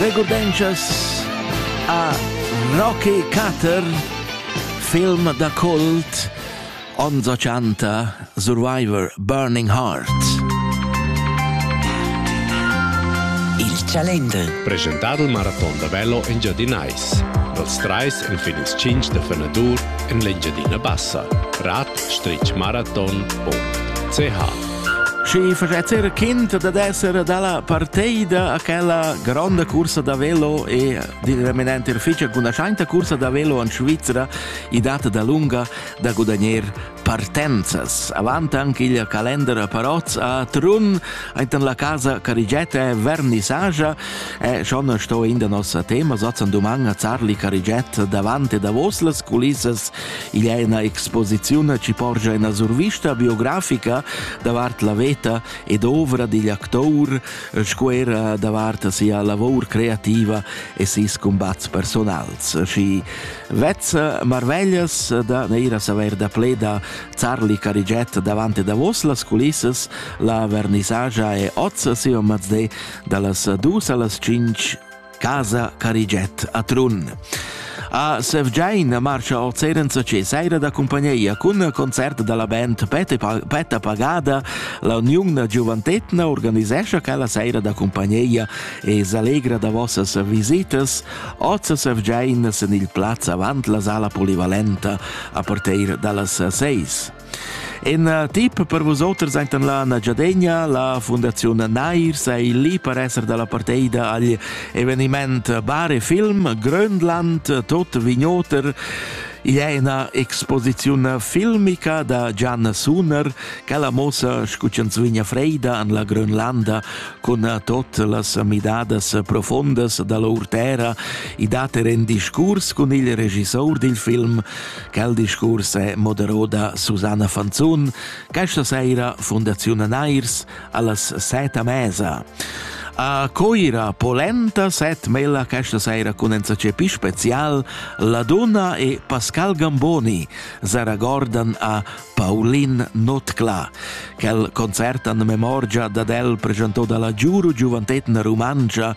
Regurdenschas a Rocky Cutter, film da kult, ons 80 Survivor Burning Heart. Il Chalender. Presentado il marathon da velo in Giadinais. Dals trais en fin ils cinc da fenadur en l'Engiadina Bassa. Rat-marathon.ch Schi facetz eir quint dad esser dalla parteida a quella gronda cursa da velo e direminent ir ficha cun la schainta cursa da velo in Svizra i dat da lunga da gudagner partenzas. Avant anche il calendar Parozz a Trun, intan la casa Carigette Vernissagia e schon sto in da nossa tema sazzan duman a Zarli Carigette davant e davos las culissas Igl è ina exposiziun che porscha ina survista biografica davart la veta ed ovra digl actour sco era davart sia lavor creativa e ses cumbats personals. Și vezza marveglias da neira saver da pleda Charlie Cariget davante davos las culissas la vernisagia e ozza siom mazde dallas dus allas cinc Casa Carigiet a Trun. A Sevgiain marcha ord Serenza che saira da cumpagnia cun concert dalla band Petta Pagada. La Uniun da Giuventetna organisescha quella saira da cumpagnia e s'allegra da vossas visitas. Oz Sevgiain sen il plaz avant la sala polivalenta a partir dallas seis. In uh, tip per vusoters enten la Nagyadegna, la Fundaziun Nair sei lì per esser dalla parteida agl eveniment Bar e Film Grönland tot Vignoter i è una exposizione filmica da Gian Suner che la mossa scucenzvigna freida an la Grönlanda con tot las midadas profondas dalla urtera i date en discurs con il regissor dil film Quel discurs è moderò da Susanna Fanzun, questa saira Fundaziun Nairs allas seta mesa. A Coira polenta set mela questa saira cun enzacepi special la donna e Pascal Gamboni zaragordan a Paulin Notclà, quel concert en memorgia dad el presentò dalla Giuru Giuventetna Rumantscha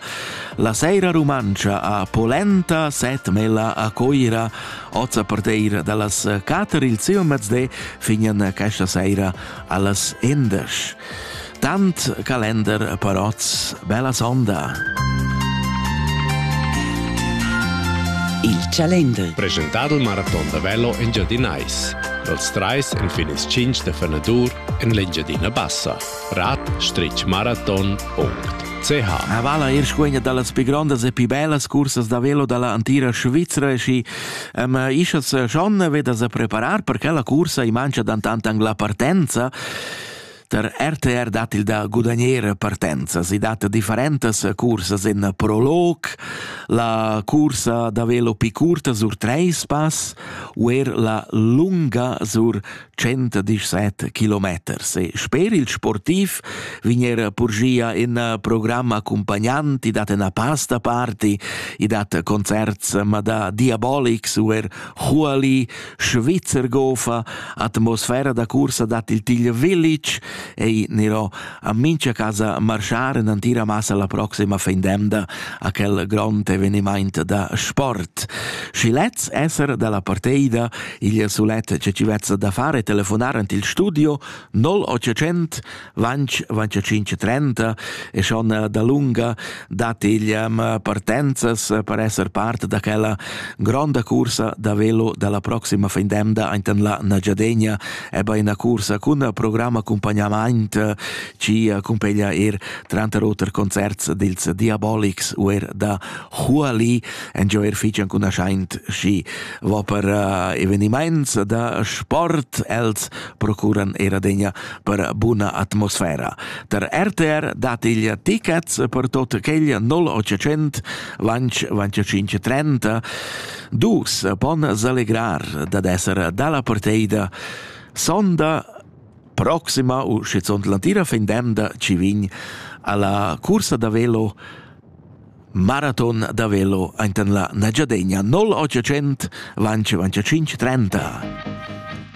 la Seira Rumantscha a Polenta, set mela a Coira, oz a parteir dallas cater il siu mezde fingen questa seira allas indesch. Tant calender per oz, bella sonda! Il calender. Presentado il maraton da velo in Giadinais. Dals trais en fin ils cinc de fenadur en l'Engiadina Bassa. rat-maraton.ch A vala er scuegna dallas pi grondas e pi bellas cursas da velo dalla antira Svizra e schi am ischas schon vedas a preparar per quella cursa i mangia dan tant angla partenza Der RTR dat il da gudagnere partenza. Si dat differentas cursas in prolog, la cursa da velo pi curta sur treis pass u er la lunga sur 117 km. E sper il sportiv vigner Purgia in programm accompagnant, i dat una pasta party, i dat concerts ma da Diabolics u er Huali Svizzer gofa atmosfera da cursa dat il Tigl Village ei niro a mincha casa marschar en antira massa la proxima fin d'emda a quel grond eveniment da sport. Schi lez esser dalla parteida il sulet che ci vezza da fare telefonar ant il studio 0800 Vanch, vanch 530 e schon eh, da lunga dat igl ehm, partenzas eh, per esser part da quella gronda cursa da velo della proxima findemda intan la Nagiadegna e bei una cursa con programm accompagnament eh, ci accompagna er tranter oter concerts dils Diabolics u er da Huali enjo er fichan con aschaint schi va per eveniments da sport els procuran era degna per buna atmosfera. Der RTR dat il tickets per tot quel 0800 lanch 2530 dus pon selegrar dad esser dalla parteida sonda proxima u schizunt l'antira fin demda ci vin alla cursa da velo Marathon da velo ainten la Nagiadegna 0800 lanci 25 30.